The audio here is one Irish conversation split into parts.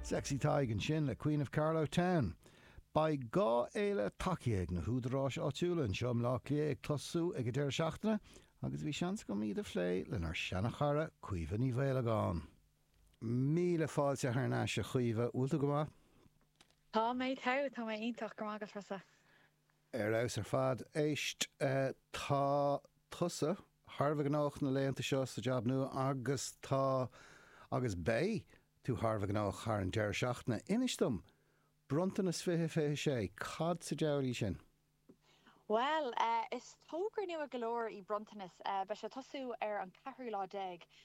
Sexy Tadhg ansin le Queen of Carlow Town. Beidh dhá fhéile tacaithe ag na húdaráis áitiúla anseo i mBleá Cliath ag tosú ag an deireadh seachtaine agus bhí seans agam iad a phlé lenár seana-chara Caoimhe Ní Mhaolagáin. Míle fáilte thar n-ais a Chaoimhe, bhfuil tú go maith? Tá mé, tá, tá mé iontach, go maith, agus tusa. Ar fheabhas ar fad. Éist, tá tusa thar a bheith gnóthach na laethanta seo sa jab nua agus tá, agus beidh, tú thar a bheith gnóthach thar an deireadh seachtaine. Inis dom, Bronntanas fiche fiche sé, cad sa diabhal í sin? Bhuel, is togra nua go leor í Bronntanas. Beidh sé ag tosú ar an ceathrú lá déag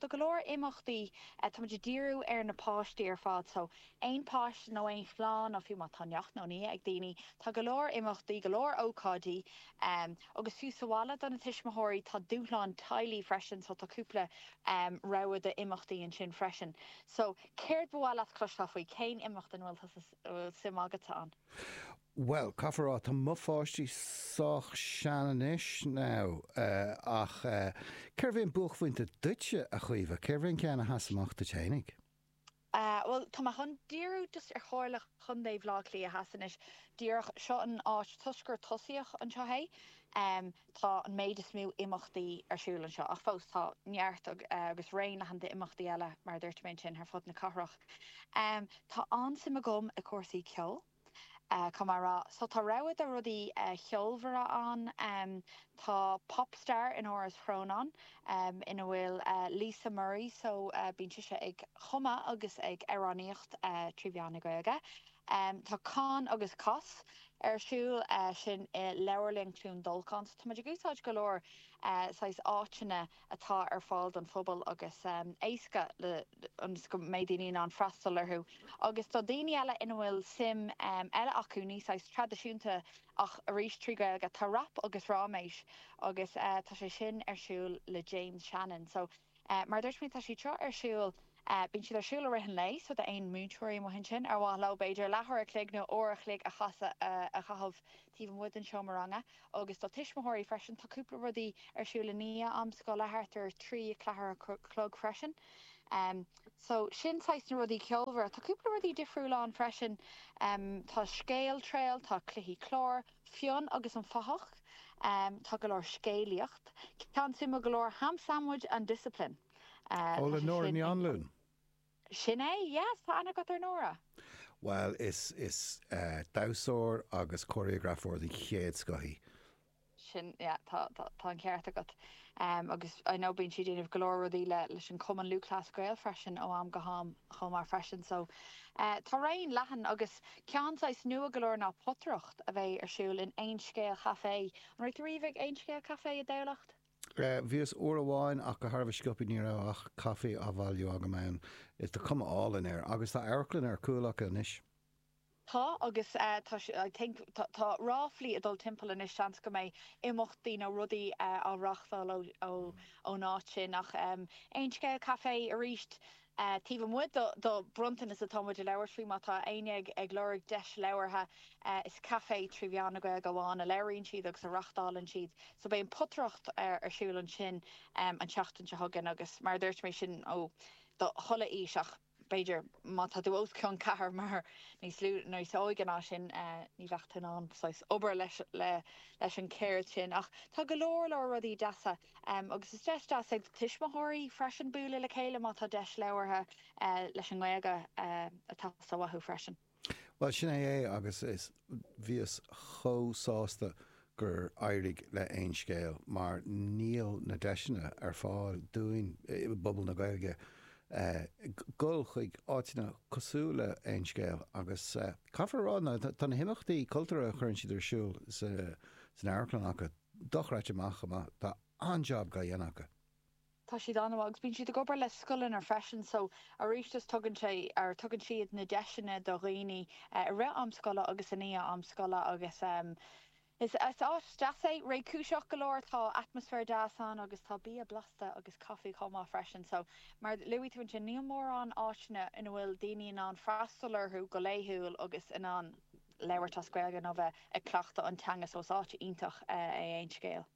Do go leor imeachtaí, táimid ag díriú ar na páistí ar fad, so aon páiste nó aon chlann, nó fiú má tá neacht nó nia ag daoine, tá go leor imeachtaí, go leor ócáidí. Agus fiú sa bhaile do na tuismitheoirí, tá dúshlán teaghlaigh freisin, so tá cúpla rogha d'imeachtaí ansin freisin. So céard ba mhaith leat cloisteáil faoi? Cén imeacht ina bhfuil tusa, a bhfuil suim agatsa ann? Bhuel, caithfidh mé a rá tá mo pháistí sách sean anois now eh ach eh cérbh é an buaicphointe duitse a Chaoimhe, cérbh é an ceann a sheas amach duit fhéinig? Eh bhuel tá mé chun díriú just ar Chomhairle Chontae Bhaile Átha Cliath Theas anois díreach, seo an áit toisc gur tosaíodh anseo é em tá an méid is mó imeachtaí ar siúl anseo ach fós tá neart eh agus raon leathan d'imeachtaí eile mar a dúirt mé ansin ar fud na cathrach. Em tá an-suim agam i gcúrsaí ceoil, caithfidh mé a rá. So tá rogha de rudaí ceolmhara ann. Tá Pop Star in Áras Chrónáin ina bhfuil Lisa Murray, so bíonn sise ag cumadh agus ag amhránaíocht trí mheán na Gaeilge. Tá Cáin agus Cos ar siúl, sin i Leabharlann Chluain Dolcáin. So tá muid ag úsáid go leor saghas áiteanna atá ar fáil don phobal agus éasca ionas go mbeidh daoine in ann freastal orthu. Agus do dhaoine eile ina bhfuil suim eile acu, níos saghas traidisiúnta ach arís trí Ghaeilge, tá rap agus ráiméis agus tá sé sin ar siúl le James Shannon. So mar a dúirt mé, tá siad seo ar siúl. Bíonn siad ar siúl i rith an lae, so d'aon múinteoirí amuigh ansin ar mhaith leo, b'fhéidir, leathuair a chloig nó uair a chloig a chaitheamh taobh amuigh den seomra ranga. Agus do tuismitheoirí freisin, tá cúpla rudaí ar siúl i ndiaidh am scoile, thart ar trí a ceathair a chlog freisin. So, sin saghas na rudaí ceolmhara. Tá cúpla rudaí difriúla ann freisin, tá scéaltrail, tá cluichí cláir, Fionn agus an Fathach, tá go leor scéalaíocht, ceann suimiúil go leor, Ham Sandwich and Discipline. Tá sé Nóra Ní Anluain? Sin é, yes, tá aithne agat ar Nóra. Bhuel, is damhsóir agus cóiréagrafóir den chéad scoth í. Sin, yeah, tá, tá, tá an ceart agat. Agus I know bíonn sí ag déanamh go leor rudaí le, leis an gCumann Lúthchleas Gael freisin ó am go ham chomh maith freisin. So, tá raon leathan agus ceann saghas nua go leor ná potaireacht a bheidh ar siúl in Aon Scéal Café. An raibh tú riamh ag Aon Scéal Café i dTamhlacht? Bhíos uair amháin ach go han-sciobtha ní raibh ach caifé á bhailiú agam ann is tá cuma álainn air agus tá amharclann ar cúl acu anois. Tá agus tá sé, I think, tá ráflaí ag dul timpeall anois, seans, go mbeidh imeachtaí nó rudaí á reáchtáil ón áit sin ach aon scéal caifé aríst? Taobh amuigh do bronntanas atá muid ag labhairt faoi, má tá éinne ag lorg deis labhartha, is caifé trí mheán na Gaeilge amháin a labhraíonn siad agus a reachtálann siad. So beidh an potaireacht ar siúl ansin an tseachtain seo chugainn agus mar a dúirt mé sin ó do chuile aois ach b'fhéidir má tá tú os cionn ceathair mar níos lú, níos óige ná sin, ní bheifeá in ann saghas obair leis an cheird sin ach tá go leor leor rudaí deasa. agus is deis deas é do thuismitheoirí freisin bualadh le chéile má tá deis labhartha leis an nGaeilge ag teastáil uathu freisin. Bhuel, sin é é agus is, bhíos chomh sásta gur éirigh le Aon Scéal mar níl na deiseanna ar fáil dúinn i bpobal na Gaeilge dul chuig áiteanna cosúil le Aon Scéal agus caithfear a rá, tá na himeachtaí cultúrtha a chuireann siad ar siúl san amharclann acu, dochreidte amach is amach. Tá an-jab dhá dhéanamh acu. Tá siad an-mhaith agus bíonn siad ag obair le scoileanna freisin so arís is tugann sé or tugann siad na deiseanna do dhaoine i rith am scoile agus i ndiaidh am scoile agus em is áit deas é, réchúiseach go leor, tá atmaisféar deas ann agus tá bia blasta agus caifé chomh maith freisin so mar a luaigh tú ansin níl mórán áiteanna ina bhfuil daoine in ann freastal orthu go laethúil agus in ann labhairt as Gaeilge nó bheith ag cleachtadh an teanga so is áit iontach é Aon Scéal?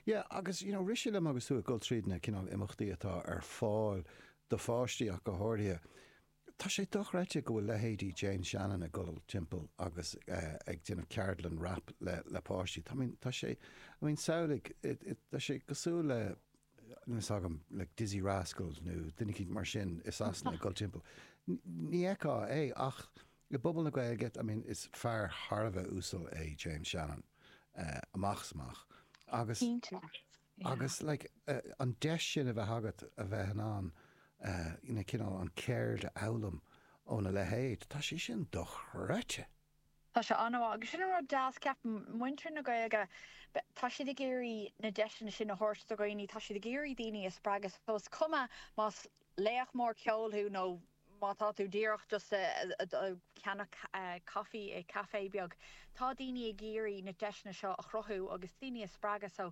Yeah agus you know rith sé liom agus tú ag dul tríd na cineál imeachtaí atá ar fáil do pháistí ach go háirithe, tá sé dochreidte go bhfuil leithéidí James Shannon ag dul timpeall agus ag déanamh ceardlann rap le páistí. I mean tá sé, I mean samhlaigh, tá sé cosúil le, níl a fhios agam, like Dizzee Rascal nó duine eicínt mar sin i Sasana ag dul timpeall. Ní fheicfeá é ach i bpobal na Gaeilge, I mean is fear thar a bheith uasal é James Shannon amach is amach agus agus like an deis sin a bheith agat a bheith in ann you know cineál an cheird a fhoghlaim óna leithéid, tá sé sin dochreidte! Tá sé an-mhaith, agus sin an rud deas, ceapaim. Muintir na Gaeilge, tá siad ag iarraidh na deiseanna sin a thabhairt do dhaoine, tá siad ag iarraidh daoine a spreagadh. So is cuma más laoch mór ceoil thú nó má tá tú díreach just ag ceannach coffee i café beag, tá daoine ag iarraidh na deiseanna seo a chruthú agus daoine a spreagadh. So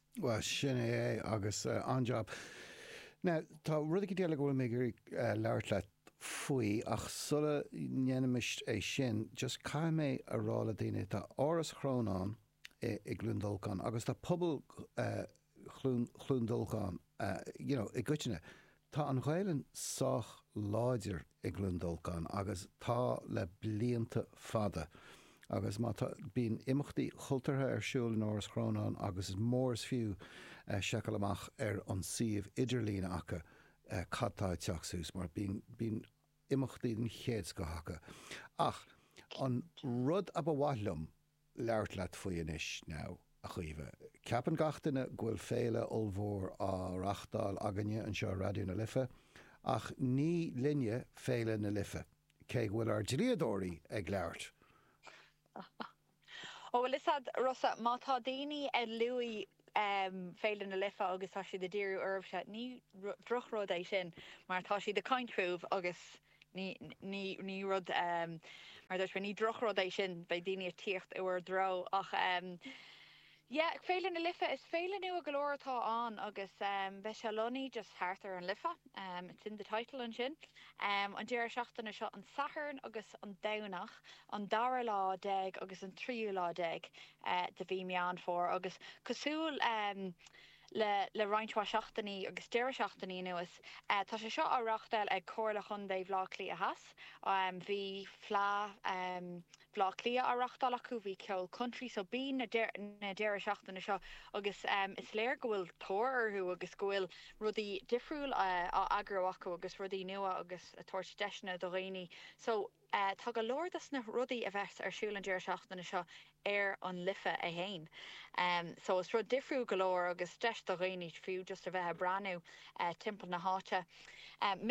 Bhuel, sin é é agus an-jab. Now, tá rud éigin eile go bhfuil mé ag iarraidh labhairt leat faoi ach sula ndéanfaimis é sin, just caithfidh mé a rá le daoine, tá Áras Chrónáin i gCluain Dolcáin agus tá pobal Chluain Dolcáin, you know, i gcoitinne, Tá an Ghaelainn sách láidir i gCluain Dolcáin agus tá le blianta fada agus má tá, bíonn imeachtaí cultúrtha ar siúl in Áras Chrónáin agus is mór is fiú seiceáil amach ar an suíomh idirlín acu cad tá ag teacht suas mar bíonn imeachtaí den chéad scoth acu. Ach an rud a ba mhaith liom labhairt leat faoi anois, now, a Chaoimhe. Ceapann gach duine go bhfuil féile ollmhór á reachtáil againne anseo i Raidió na Life, ach ní linne féile na Life, cé go bhfuil ár dlíodóirí ag labhairt! Ó bhuel, is ea, Rossa, má tá daoine ag luadh Féile na Life agus tá siad a' díriú oraibhse. Ní drochrud é sin mar tá siad a' caint fúibh agus ní, ní, ní rud, mar a dúirt mé, ní drochrud é sin, beidh daoine a' tíocht i bhur dtreo ach yeah, Féile na Life, is féile nua go leor atá ann agus beidh sé lonnaithe just thart ar an Life, it's in the title ansin, an deireadh seachtaine seo, an Satharn agus an Domhnach, an dara lá déag agus an tríú lá déag. de mhí Meán Fómhair agus cosúil le roinnt mhaith seachtainí agus deireadh seachtainí anuas, tá sé seo á reáchtáil ag Comhairle Chontae Bhaile Átha Cliath Theas. Bhí Fleadh Bhaile Átha Cliath á reáchtáil acu, bhí ceol country, so bíonn na deireadh seachtaine seo agus is léir go bhfuil tóir orthu agus go bhfuil rudaí difriúil á eagrú acu agus rudaí nua agus ag tabhairt deiseanna do dhaoine. So. Tá go leor dos na rudaí a bheas ar siúl an deireadh seachtaine seo ar an Life 1 so is rud difriúil go leor agus deis do dhaoine fiú just a bheith a' breathnú timpeall na háite.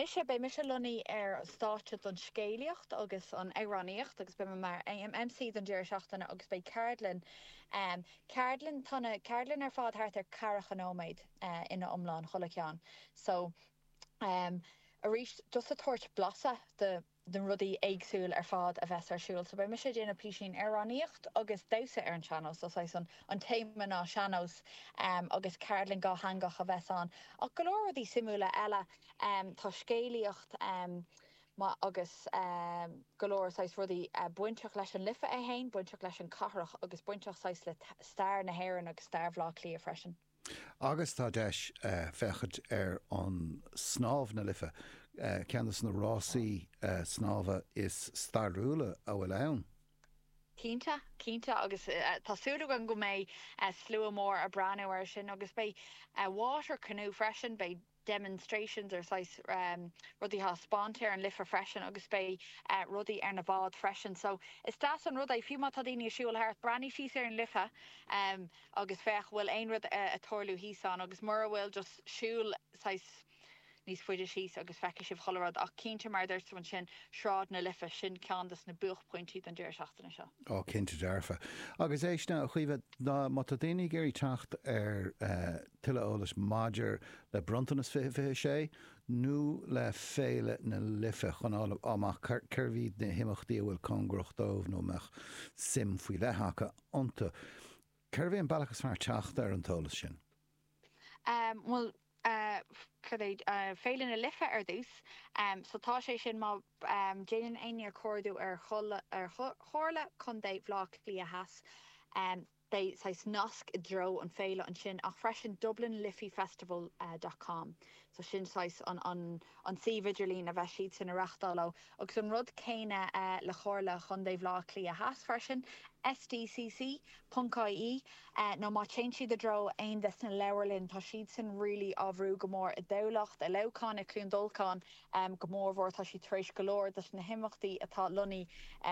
Mise, beidh mise lonnaithe ar stáitse don scéalaíocht agus an amhránaíocht agus beidh mé mar MC don deireadh seachtaine agus beidh ceardlann, ceardlann, tá na ceardlann ar fad thart ar ceathracha nóiméad ina iomlán chuile ceann so aríst just a' tabhairt blaiseadh do na rudaí éagsúil ar fad a bheas ar siúl. So beidh mise ag déanamh písín ar amhránaíocht agus damhsa ar an seannós, so saghas an an téama ná seannós em agus ceardlann dhátheangach a bheas ann ach go leor rudaí suimiúla eile em tá scéalaíocht em maith agus em go leor saghas rudaí eh bainteach leis an Life é fhéin, bainteach leis an cathrach agus bainteach saghas le stair na hÉireann agus stair Bhleá Cliath freisin. Agus tá deis féachaint ar an snámh na Life, ceann de na rásaí snámha is stairiúla a bhfuil ann. Cinnte, cinnte agus tá súil againn go mbeidh slua mór a breathnú ar sin agus beidh water canoe freisin, beidh. demonstrations ar saghas rudaí taispeáinte ar an Life freisin agus beidh rudaí ar na bháid freisin so is deas an rud é fiú má tá daoine a siúl thart breathnaigh síos ar an Life agus féach bhfuil aon rud a tarlú thíos ann agus mura bhfuil just siúl saghas níos faide síos agus feicfidh sibh chuile rud ach cinnte mar a dúirt tú ansin Snámh na Life sin ceann dos na buachphointí don deireadh seachtaine seo. Ó cinnte dearfa. Agus éist now a Chaoimhe má tá daoine ag iarraidh teacht ar Tuilleadh eolais maidir le Bronntanas 2026 nó le Féile na Life chun fháil amach cé hiad na himeachtaí a bhfuil cóngarach dóibh nó a mbeadh suim faoi leith acu iontu. Cérbh é an bealach is fearr teacht ar an t-eolas sin? Bhuel, cad é, Féile na Life ar dtús. So tá sé sin, má dhéanann éinne cuardú ar Chomhairle Contae Bhaile Átha Cliath Theas, Beidh saghas nasc i dtreo an féile ansin ach freisin dublinliffeyfestival dot com so sin saghas an an suíomh idirlín a bheas siadsan a reachtáil ó agus an rud céanna le Comhairle Chondae Bhaile Átha Cliath Theas freisin sdcc ponc ie nó má téann siad i dtreo aon des na leabharlainn tá siadsan really á bhrú go mór i dTamhlacht, i Leamhcán, i Cluain Dolcán go mór mhór tá siad tar éis go leor des na himeachtaí atá lonnaí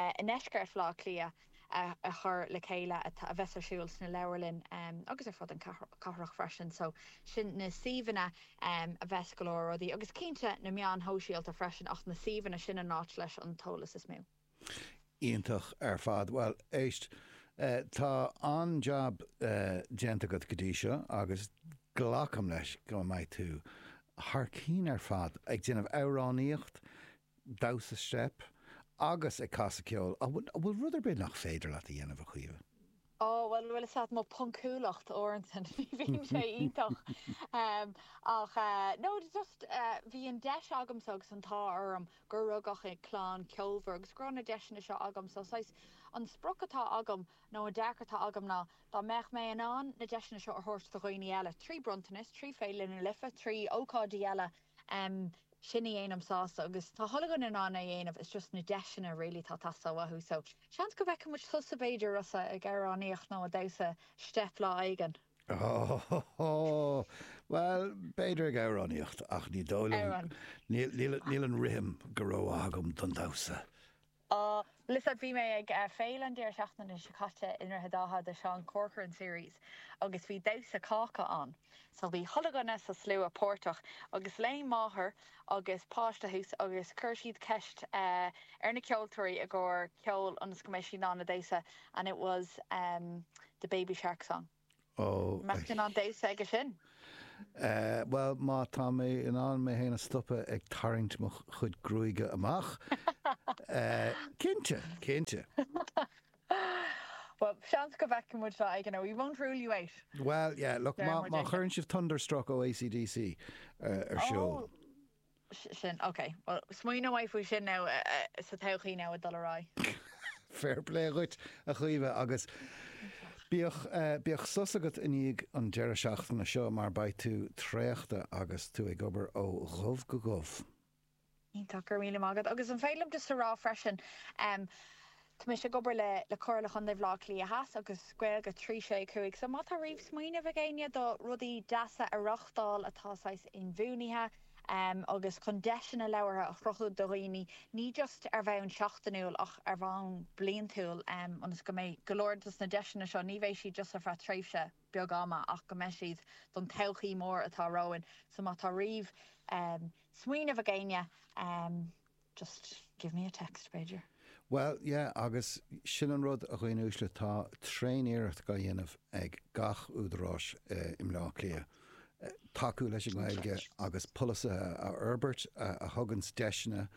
i ndeisceart Bhaile Átha Cliath. a chur le chéile a bheas ar siúl sna leabharlainn agus ar fud an cathrach freisin. So sin na suíomhanna a bheas go leor rudaí agus cinnte na meáin shóisialta freisin ach na suíomhanna sin an áit leis an t-eolas is mó. Iontach ar fad. Bhuel, éist, tá an-jab déanta agat go dtí seo agus glacaim leis go mbeidh tú thar cinn ar fad ag déanamh amhránaíocht damhsa steip agus ag casadh ceoil. An bhfuil rud ar bith nach féidir leat a dhéanamh, a Chaoimhe? Ó, bhuel, is ait, mo phoncúlacht uaireanta, ní bhíonn sé iontach ach no, just bhí an deis agamsa agus an t-ádh orm gur rugadh i clann ceolmhar agus go raibh na deiseanna seo agam so saghas an sprioc atá agam nó an dearcadh atá agam ná dá mbeadh mé in ann na deiseanna seo a thabhairt do dhaoine eile trí Bronntanas, trí Féile na Life, trí ócáidí eile. em sin a dhéanann sásta agus tá chuile dhuine in ann é a dhéanamh it's just na deiseanna really atá ag teastáil uathu so seans go bhfeicfidh muid tusa b'fhéidir Rossa ag amhránaíocht nó ag damhsa steip lá éigin. Óóóó bhuel b'fhéidir ag amhránaíocht ach ní dóigh liom níl an rithim go rómhaith agam don damhsa. Á, listen, bhí mé ag Féile an deireadh seachtaine seo caite i nDroichead Átha do Seán Corcoran Series agus bhí damhsa cáca ann. So bhí chuile dhuine sa slua páirteach agus léim máthair agus páiste suas agus chuir siad ceist ar na ceoltóirí i gcomhair ceoil ionas go mbeidh siad in ann a damhsa and it was the Baby Shark song. Ó. Mbeadh tú in ann damhsa aige sin? Bhuel, má tá mé in ann mé féin a stopadh ag tarraingt mo chuid gruaige amach, cinnte, cinnte. Bhuel, seans go bhfeicfidh muid lá éigin é, we won't rule you out. Bhuel, yeah, look, má chuireann sibh Thunderstruck ó AC/DC ar siúl. sin. Ok, bhuel, smaoineoidh mé faoi sin now sa todhchaí now ag dul ar aghaidh. Fair play dhuit, a Chaoimhe, agus bíodh, bíodh sos agat i ndiaidh an deireadh seachtaine seo mar beidh tú traochta agus tú ag obair ó dhubh go dubh. Iontach, go raibh míle maith agat. Agus an féidir liom just a rá freisin, em, Tá mise ag obair le le Comhairle Chontae Bhaile Átha Cliath Theas agus Gaeilge 365 so má tá riamh smaoineamh ag éinne do rudaí deasa a reáchtáil atá saghas inbhuanaithe em agus chun deiseanna labhartha a chruthú do dhaoine ní just ar bhonn seachtainiúil ach ar bhonn bliantúil em ionas go mbeidh go leor dos na deiseanna seo ní bheidh siad just ar feadh tréimhse beag ama ach go mbeidh siad don todhchaí mór atá romhainn so má tá riamh em smaoineamh ag éinne em Just give me a text, b'fhéidir. Bhuel, yeah, agus sin an rud, a dhaoine uaisle, tá tréaniarracht á dhéanamh ag gach údaráis i mBleá Cliath tacú leis an nGaeilge agus polasaithe a fhorbairt a thuganns deiseanna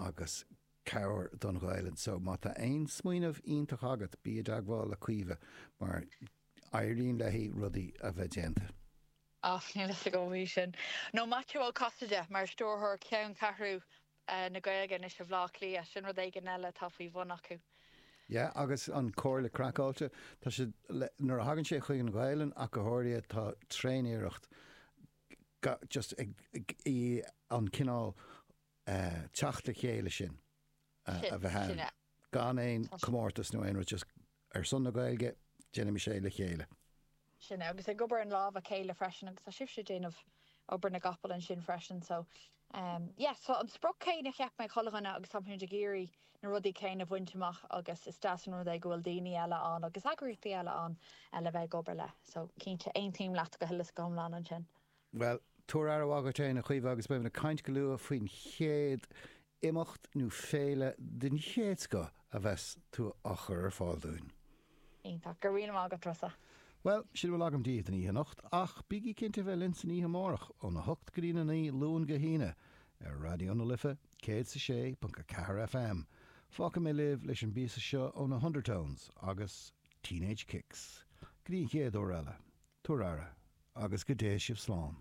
agus cabhair don Ghaelainn. So, má tá aon smaoineamh iontach agat, bí i dteagmháil le Caoimhe mar éiríonn léi rudaí a bheith déanta. Ach níl fhios agam faoi sin. Nó Maitiú Ó Casaide mar stiúrthóir cheanncheathrú na Gaeilge anois i mBleá Cliath, sin rud éigin eile atá faoi bhun acu. Yeah, agus an Comhairle Craiceáilte, tá siad le, nuair a thagann sé chuig an Ghaelainn ach go háirithe, tá tréaniarracht ga, just ag, ag, í an cineál eh teacht le chéile sin. a bheith ann, gan aon chomórtas nó aon rud, just ar son na Gaeilge, déanaimis é le chéile. Sin é, agus ag obair as lámh a chéile freisin agus tá sibhse ag déanamh obair na gcapall ansin freisin, so yes, tá an sprioc chéanna, cheap mé, ag chuile dhuine agus táimid ag iarraidh na rudaí céanna a bhaint amach agus is deas an rud é go bhfuil daoine eile ann agus eagraíochtaí eile ann le bheith ag obair le, so cinnte, aontaím leat go huile is go hiomlán ansin. Bhuel, tabhair aire mhaith dhuit fhéin, a Chaoimhe, agus beimid ag caint go luath faoin chéad imeacht nó féile den chéad scoth a bheas tú a chur ar fáil dúinn. Iontach. Go raibh míle maith agat, Rossa. Bhuel, sin a bhfuil agam daoibh don oíche anocht, ach bígí cinnte a bheith linn san oíche amárach, óna hocht go dtína naoi, Luan go hAoine, ar Raidió na Life, céad is a sé ponc a ceathair FM. Fágfaidh mé sibh leis an bpíosa seo ó na hUndertones, agus. Teenage Kicks, go dtí an chéad uair eile, tugaigí aire, agus go dté sibh slán.